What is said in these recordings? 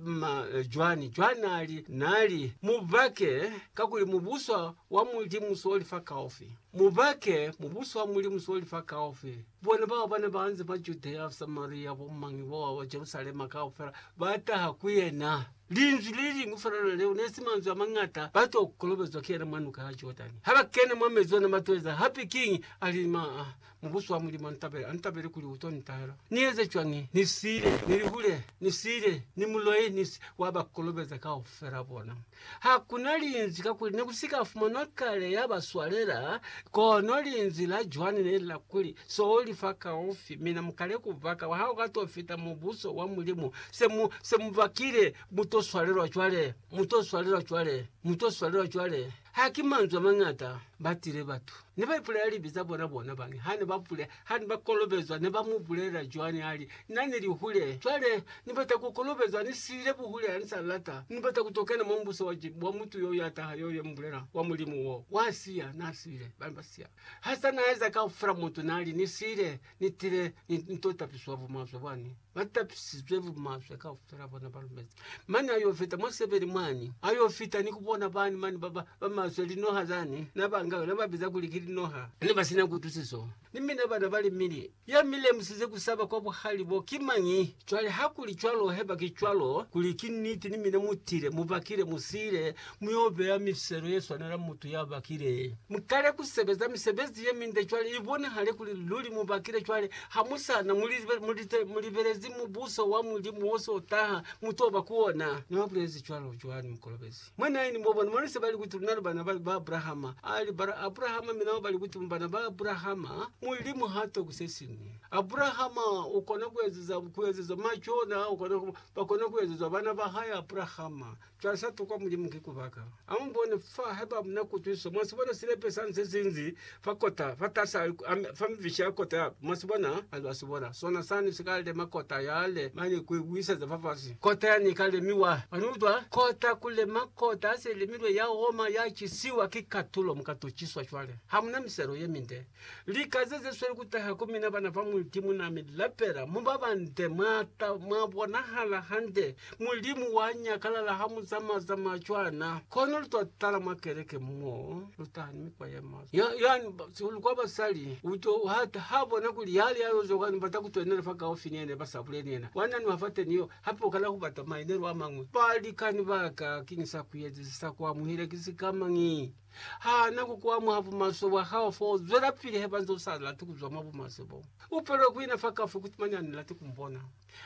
ma Joani. Joani ali, Nali, mubake, kakuli mubuswa wa Mulimu soli fa kaufi. Mubake, mubuswa wa Mulimu soli fa kaufi. Bona bao bane baanze mwa Judea, Samaria, bo mañi boa ba Jerusalema kaufela, ba taha ku yena. Linzwi leliñwi felela leo nesi manzwi amañata, ba to kolobezwa ki yena mwa nuka ya Jordani. Haba kena mwa mezi ona, ba to eza hape kiñi? Ali, Ma, Mubuso wa Mulimu antabela, antabele kuli uto nitahela. Ni eze cwañi? Ni siile, ni lihule, ni siile, ni muloi, ni si, wa ba kolobeza kaufela bona. Hakuna linzwi, kakuli ne ku si ka fumanwa kale ya ba swalela, kono linzwi la Joani ne li la kuli, So li fa kaufi, mina mukale ku baka, ha u ka to fita Mubuso wa Mulimu. Se mu, se mu bakile, mu to swalelwa cwale, mu to swalelwa cwale, mu to swalelwa cwale. Ha ki manzwi a mañata, ba tile batu. Ne ba ipulela libi za bona bona bani? Ha ne ba pule, ha ne ba kolobezwa, ne ba mu bulelela cwani ha li, Na ni li hule, cwale Ni bata ku kolobezwa, Ni siile buhule, ha Ni sa lata, Ni bata ku to kena mwa Mubuso wa, wa mutu yo ya taha, yo Ye mubulela, wa Mulimu wo. Wa siya, na siile, ba ne ba siya. Ha sa na eza kaufela, mutu na li, Ni siile. ni tile ni nto tapiswa bumaswe bwani, ba tapisizwe bumaswe kaufela bona ba lumezi. Mane ayo fita mwa sebele mwani, ayo fita ni kubona bani mani ba ba ba maswe linoha zani, na ba nga na ba biza kuli ki linoha, ne ba sina kutusiso. Ni mina bana ba limili, ya mi lemusize kusaba kwa buhali bo ki mañi? Cwale, hakuli cwalo, haiba ki cwalo, kuli ki niti, ni mina mutile, mubakile, musile muyo beya mifiselo ye swanela mutu ya bakile. Mukale kusebeza misebezi ye minde cwale, ibonahale kuli luli mubakile cwale, hamusana mulibelezi Mubuso wa Mulimu wo so taha, mutoba ku ona. Na bulezi cwalo Joani Mukolobezi. Mwa 9, mwabona, mwa nise bali kuti luna li bana ba Abrahama. Ali, Bara Abrahama, mina mwa bali kuti mu bana ba Abrahama, Mulimu ha tokwi sesiñwi. Abrahama ukona kuezeza kuezezwa macona ukona ku, bakona kuezezwa bana ba hae Abrahama. Cwale sa tokwa Mulimu ki kubaka. Amubone fa haiba muna kutwisiso. Mwasibona silepe sani sesinzi fa kota fa tasa ame- fa mifishi ya kota ya, mwasibona? Haiba asibona sona sani sika lema kota yale mane ku ibuiseza fafasi, kota yani ika lemiwa. Mwaniutwa? Kota kulema kota ya selemilwe ya oma ya cisiwa ki katulo, muka tuciswa cwale. Hamuna miselo yeminde. Lika ze ze sweli ku taha ku mina bana ba Mulimu na mi lapela, mu ba bande, mwa ta, mwa bonahala hande. Mulimu wa nyakalala ha mu zamaya zamaya cwana. Kono lu to tala mwa keleke mo, lu taha ni mikwa ye maswe. Ya, yani, ba- sihulu kwa basali, u to, ha, ha bona kuli yale ya yo zwakani bata ku twenela fa kaufi ni yena, ba sa bule ni yena. Wa nanuha fa teni yo, hape u kala ku bata mainelo a mañwi. Balikani ba ka, kiñi sa ku eza, si sa ku amuhela, ki sikamañi? Hana kukuha mwa bumaswe bwa hao fo zwelapili haiba nze usalati kuzwa mwa bumaswe bo. Upelwe kuina fa kafu kuti mane anilati kumbona.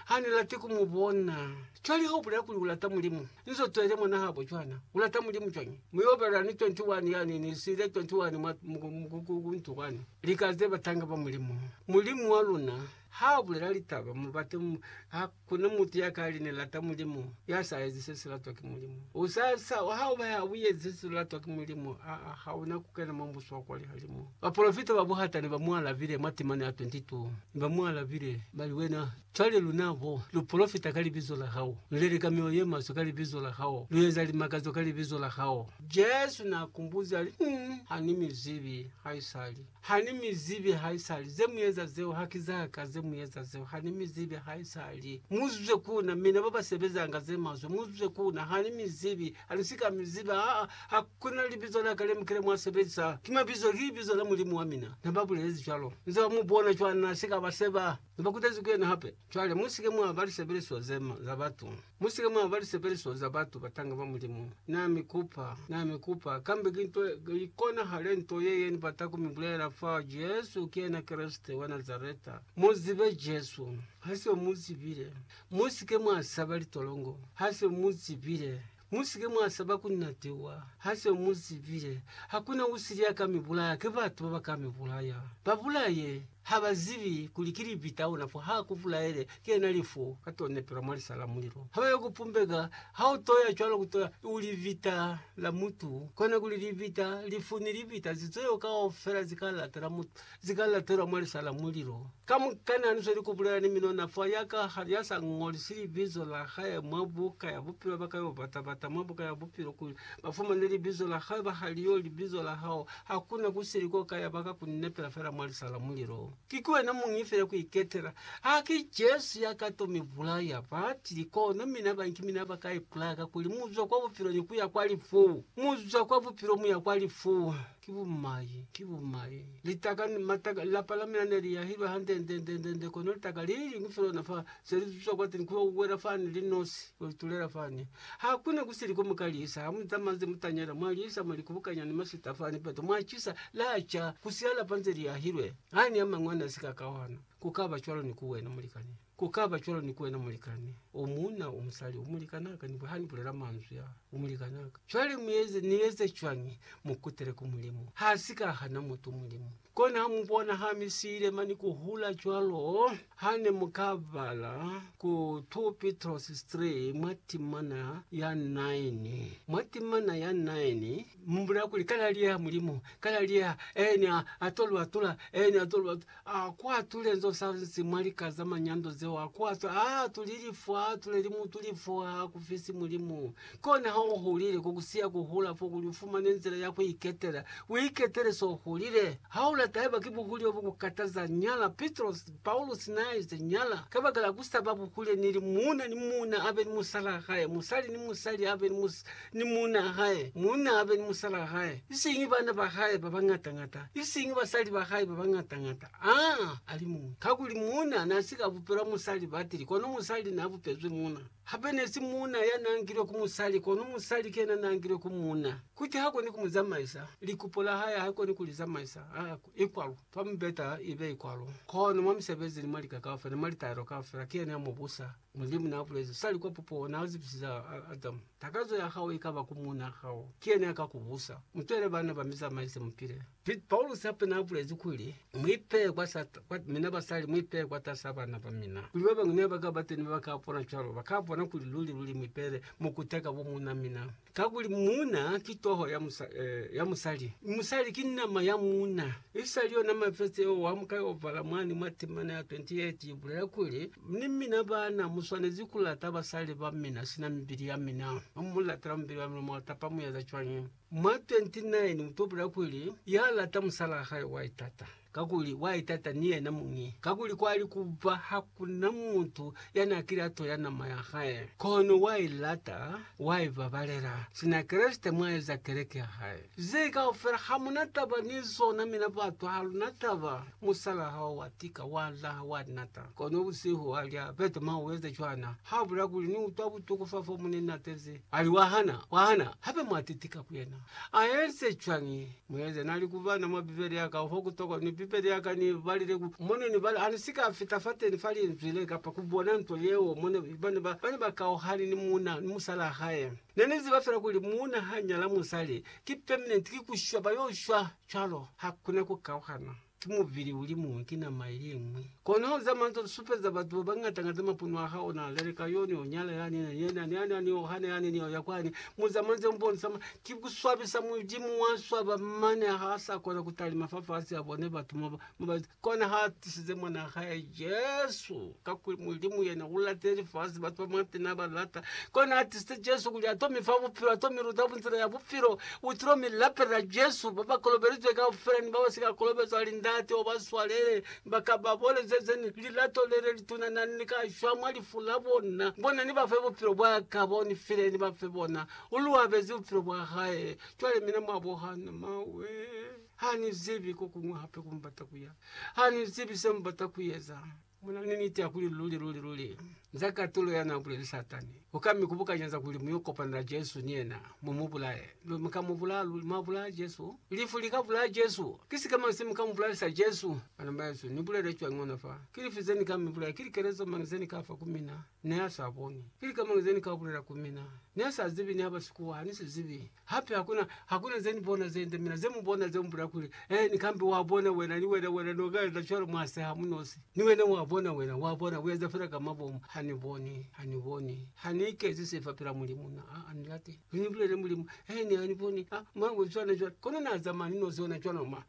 Hanilati kumubona. Cwale haubulela kuli ulata Mulimu, nze utwele mwana habo cwana. Ulata Mulimu cwañi? Mi uopela ni 21 yani, ni siile 21 mwa, ku, ku, ku ntu kwani. Lika ze batanga ba Mulimu. Mulimu wa luna haabulela litaba, mubate, ha, Kono mutu ya ka li ni lata Mulimu, ya sa ezi se si latwa ki Mulimu. U sa, sa, ha u ba ya u ezi se si latwa ki Mulimu, aa, ha u na ku kena mwa Mubuso wa kwa lihalimu. Bapolofita ba buhata ne ba mu alabile mwa temana ya 22. Ne ba mu alabile, ba li, Wena, cwale luna bo, lu polofita ka Libizo la Hao, lu leleka mioyo ye maswe ka Libizo la Hao, lu eza limakazo ka Libizo la Hao. Jesu n'a kumbuzi a li, Nn, ha ni mi zibi haisali. Ha ni mi zibi haisali. Ze mu eza zeo ha ki za ka, ze mu eza zeo ha ni mi zibi haisali. Mu zwe ku na, mina ba ba sebezanga ze maswe, mu zwe ku na, ha ni mi zibi. Ha ni si ka mi ziba, aa, ha ku na libizo la ka le mu kile mwa sebezisa. Ki mabizo, ki libizo la Mulimu wa mina. Ne ba bulezi cwalo. Nze ba mu bona cwana, na si ka ba seba. Ne ba kutezi ku yena hape. Cwale, mu si ke mwa ba lisebeleswa ze ma, za batu. Musike mwaba lisebelezo za batu batanga ba Mulimu. Na mi kupa, na mi kupa, kambe ki nto i konahale nto ye ye ni bata ku mi bulela fa Jesu ki yena Kreste wa Nazareta. Mu zibe Jesu. Ha se mu zibile, musike mwa saba litolongo. Ha se mu zibile, musike mwa saba ku natiwa. Ha se mu zibile, hakuna usili ya ka mi bulaya, ki batu baba ka mi bulaya. Ba bulaye! Ha ba zibi kuli ki libi tauna, fo ha ku bulaele, ki yena lifu, ka to nepelwa mwa lisa la mulilo. Ha ba yo ku pumbeka, ha u toya cwalo ku toya u libita la mutu, kona kuli libita, lifu ni libita ze zeo kaufela zi ka latela mutu, zi ka latelwa mwa lisa la mulilo. Kamukana ni sweli ku bulela ni minona fa ya ka, ya sa ngolisi libizo la hae mwa buka ya bupilo, ba ka yo bata bata mwa buka ya bupilo kuli ba fumane libizo la hae, ba ha li yo libizo la hao, Hakuna kusili ko ka yaba ka ku ni nepela fela mwa lisa la mulilo. Ki ku wena muñi fela ku iketela. Haki Jesu ya ka to mi bulaya. Ba tili, Kono mina ba nki mina ba ka ipulaya kakuli mu zwa kwa bupilo ni ku ya kwa lifu. Mu zwa kwa bupilo mu ya kwa lifu. Ki bumai, ki bumai. Litaka, mataka, lapa la mina ne li yahilwe hande-nde-nde-nde-nde, kono litaka li liñwi fela lona fa, se li zwa kwateni ku yo wela fani li nosi, ku yo itulela fani. Ha ku ne ku si li ko mu ka lisa, ha mu zamazi mutanyela, mwa lisa, mwa li kubukanya ni masita fani peto, mwa cisa, la ca, ku siya lapa nze li ahilwe. Ha ni a mañwi a ne a si ka kahwana. Ku ka ba cwalo ni ku wena, mulikani. Ku ka ba cwalo ni ku wena, mulikani. O muuna, o musali, o mulikani a ka ni, ha ni bulela manzwi a, o mulikani a ka. Cwale mu eze, ni eze cwañi? Mu kutele ku Mulimu. Ha si ka hana mutu, Mulimu. Kono ha mu bona ha mi siile mani ku hula cwalo, ha ne mu ka bala ku 2 Pitrosi 3 mwa timana ya 9. Mwa timana ya 9, mu bulela kuli, Ka laliyeha Mulimu, ka laliyeha, ene a, a to lu atula, ene a to lu atula. A ku atule nzo sa nsi mwa lika za manyando zeo, a ku atule, a atuli lifwa, a atuleli mutu lifwa, ha ku fisi Mulimu. Kona ha u hulile, ko ku siya ku hula fo kuli u fumane nzila ya ku iketela. U iketele s'o hulile. Ha u lata haiba ki buhuli bo bu ku kataza, nyala. Pitrosi, Paulusi n'a ize, Nyala. Kabakala ku sa ba buhule ni li, muuna ni muuna a be ni musalaa hae, musali ni musali a be ni, ni muunaa hae, muuna a be ni musalaa hae, isiñi bana ba hae ba bañata-ñata, isiñi basali ba hae ba bañata-ñata, aa, a li muñwi. Kakuli muuna n'a si ka bupelwa musali batili, kono musali n'a bupezwi muuna. Hape nesi muuna ya na ngilwe ku musali, kono musali ki yena na ngilwe ku muuna. Kuti ha koni ku mu zamaisa, likupo la hae ha koni ku li zamaisa, a i kwalo, fa mubeta ibe i kwalo. Kono mwa misebezi ni mwa lika kaufela ni mwa litaelo kaufela, ki yena ya mu busa. Mulimu na bulezi, Sali kwa pupuho, na zibisize Adamu, Takazo ya hao ikaba ku muuna hao, ki yena ya ka ku busa. Mu twele bana ba mi zamaise, mu pile. Piet Paulus hape n'a bulezi kuli, Mu ipehe kwa mina basali, mu ipehe kwatas'a bana ba mina, kuli ba bañwi ne ba ka ba teni ba ba ka bona cwalo, ba ka bona kuli luli-luli mu ipehele mo kuteka bo muuna mina. Kakuli muuna ki toho ya musali, mi musali ki nama ya muuna. Isali yona mafese o wa muka y'o bala mwani mwa temana ya 28 i bulela kuli, Ni mina baana, mu swanezi ku lata basali ba mina sina mibili ya mina. Mu mu latela mubili wa mina, mwa tapa mu eza cwañi? Mwa 29 utopela kuli ya lata musalaa hae wa itata, kakuli wa itata ni yena muñi, kakuli kwali kuba hakuna mutu yana kile a toya nama ya hae, kono wa ilata, wa ibabalela, sina Kreste mwa eza keleke ya hae. Ze kaufela hamuna taba ni zona, mina batu haluna taba. Musalaa hao wa tika, wa laha, wa nata, kono busihu alya, Peter, mwa ueza cwana, ha bula kuli, Ni utwa butuku fa fo mu ni natezi. Ali, Wa hana, wa hana, hape mwa titika ku yena. A eze cwañi? Mu eze, Na li ku bana mwa Bibele ya ka, ho ku tokwa, ni Bibele ya ka, ni balile ku Mo ne ni bala. A ne si ka fita fateni fa Linzwi le, kapa ku bona nto yeo. Mo ne, ba ne ba, ba ne ba kauhani ni muuna, ni musalaa hae. Ne ni ziba fela kuli muuna ha nyala musali, ki permanent, ki ku shwa, ba yo shwa cwalo. Hakuna ku kauhana. Ki mubili uli muñwi, ki nama iliñwi. Kono za manzwa li supeza batu babañata-ñata mapunwa a hao, na leleka yo, ni yo nyala yani, ni yena, ni yani, ni yo hana yani, ni yo ya kwani. Muza manzwa yo mbonisa ma, ki kuswabisa Mulimu wa swaba, mane ha sa kona kutalima fa fasi, abone batu mo ba, mo ba, kona ha tisize Mwana wa hae Jesu. Kakuli Mulimu yena ulatile lifasi, batu ba mwateñi nabalata. Kona atisile Jesu kuli ato mifa bupilo, ato miluta nzila ya bupilo. Utilo milapelela Jesu, babakolobelizwe kaufela ni babasika kolobezwa hali Ndate obaswalele, bakababolezeze ni lilato lelituna nani kashwa mwa lifu labona. Bona nibafe bupilo bwaka bo nifile, nibafe bona. Uluabezi bupilo bwahae. Cwale mina mwabo hano, mawe, hanizibi kokuñwi hape kumubata kuya. Hanizibi semubata kueza. Muna ni niti ya kuli luli, luli, luli, nza katulo ya na buleli Satani. U ka mi kubukanya za kuli mu yo kopana na Jesu ni yena, mu mu bulaye. Luli, mu ka mu bulaya, luli, mwa bulaya Jesu. Lifu li ka bulaya Jesu. Ki sikema se mu ka mu bulalisa Jesu. Bana bahesu, ni bulele cwañi ona fa? Ki lifi ze ni ka mi bulaya? Ki likelezo mañi ze ni ka fa ku mina? Neasaboni pili kamana zenikabulela ku mina, nesazibi niaba sikuwa, hanisizibi hape hakuna hakuna zenibona zende mina, zemubona zemubulela kuli eh ni kambe wabona wena ni wena wena nokaeza cwalo mwaseha munosi ni wena wabona wena wabona ueza fela ka mabomu haniboni haniboni hanikezi sifa pela Mulimu na aa nilate. Mi ni bulelele Mulimu, he ne a ni boni, a mwa bo cwana cwana. Kono na zamaya ni nozi ona cwana mwa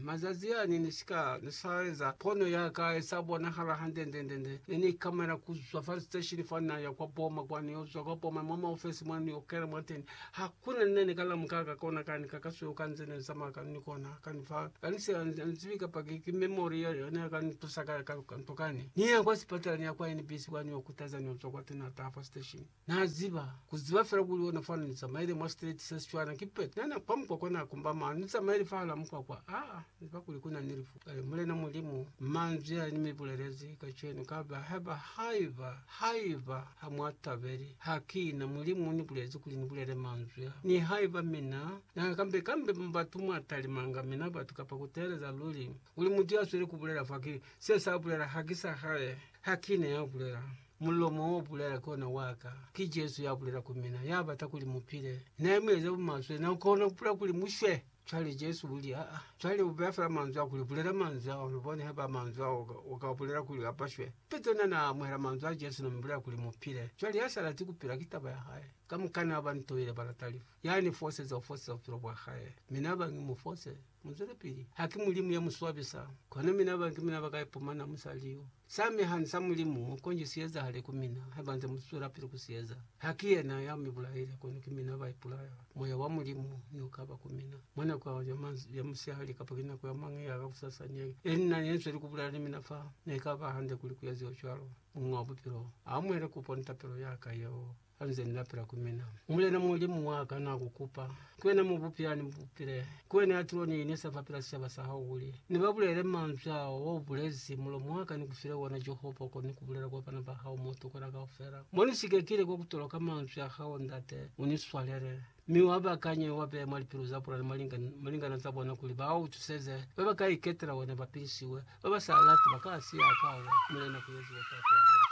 mazazi a ne ni si ka sa eza pono ya ka ye sa bonahala hande nde nde nde. Ne ni ikamela ku zwa fa station fa na ya kwa boma kwa ni yo zwa kwa boma mwa maofesi mwa ni yo kena mwa teni. Ha ku na ne ni ka lamuka ka kona ka ni ka ka sweo ka nze ne ni zamaya ka ni kona ka ni fa ka ni si ni zibi kapa ki ki memory ya ne ya ka ni tusa ka ka nto ka ne. Ni ya kwa sipatala ni ya kwa NBC kwa ni yo kutaza ni yo zwa kwa teni ha taha fa station. Na ziba, ku ziba fela kuli ona fana ni tsamaile mwa straight sa Setswana, ki pet na na kwa mukwakwa na kumba mano, ni tsamaile fahala mukwakwa. Aa, ni ziba kuli kuna ni lifu. Kale, Mulena Mulimu, manzwi a ni mi bulelezi kacenu, kaba, haiba, haiba, haiba ha mwa tabeli, ha ki na. Mulimu uni bulezi kuli ni bulele manzwi a. Nihaiba mina na kambe, kambe mu batu mwa talimanga mina batu, kapa ku teeleza luli, kuli mutu ya sweli ku bulela fa, ki se sa bulela, ha ki sa hae, ha ki ne ya bulela. Mulomo o bulela ki ona wa ka. Ki Jesu ya bulela ku mina, ya bata kuli mu pile. Ne mu eza bumaswe, na kona ku pula kuli mu shwe. Cwale Jesu u li, Aa. Cwale u beya fela manzwi a kuli, Bulela manzwi ao. Lu bone haiba manzwi ao u ka bulela kuli a ba shwe. Petro na na amuhela manzwi a Jesu na mu bulela kuli mu pile. Cwale ya sa lati ku pila ki taba ya hae. Kamukana ba ntoile ba lata lifu. Ya ni foseza u foseza bupilo bwa hae. Mi na ba ngi mu fose. Muzwelepili. Ha ki Mulimu ya mu swabisa, kono mina ba ki mina ba ka ipumana mu sa liyo. Sa mi ha ni sa Mulimu, konji si ezahale ku mina, haiba nze mu zwelapili ku si eza. Ha ki yena ya mi bulaile, kono ki mina ba ipulaya. Moya wa Mulimu ne u ka ba ku mina, mwa nako ya musihali kapa ki nako ya mañi ya kakusasa ne e li na ne zweli ku bulela ni mina fa, ne ka ba hande kuli ku eziwe cwalo. Muñi wa Bupilo a amuhele kupo ni tapelo ya ka yeo. Hanize ni lapela ku mina, Mulena Mulimu wa ka, na ku kupa, ki wena mubupi ya ni bupile, ki wena ya til'o ni inisa fa pila sicaba sa hao, kuli ni ba bulele manzwi ao wa u bulezi, mulomo wa ka ni ku file ona, Jehova, kono ni ku bulela kwa bana ba hao mo tukuna kaufela, mo ni sikekile kwa ku toloka manzwi a hao, Ndate, u ni swalele, mi wa bakanye, wa beye mwa lipilu za bona ni mwa malingana za bona, kuli ba u tuseze, ba ba ka iketela wena ba pilisiwe, ba ba sa lati ba ka siya, ka wa, Mulena, ku eziwe tato ya hao.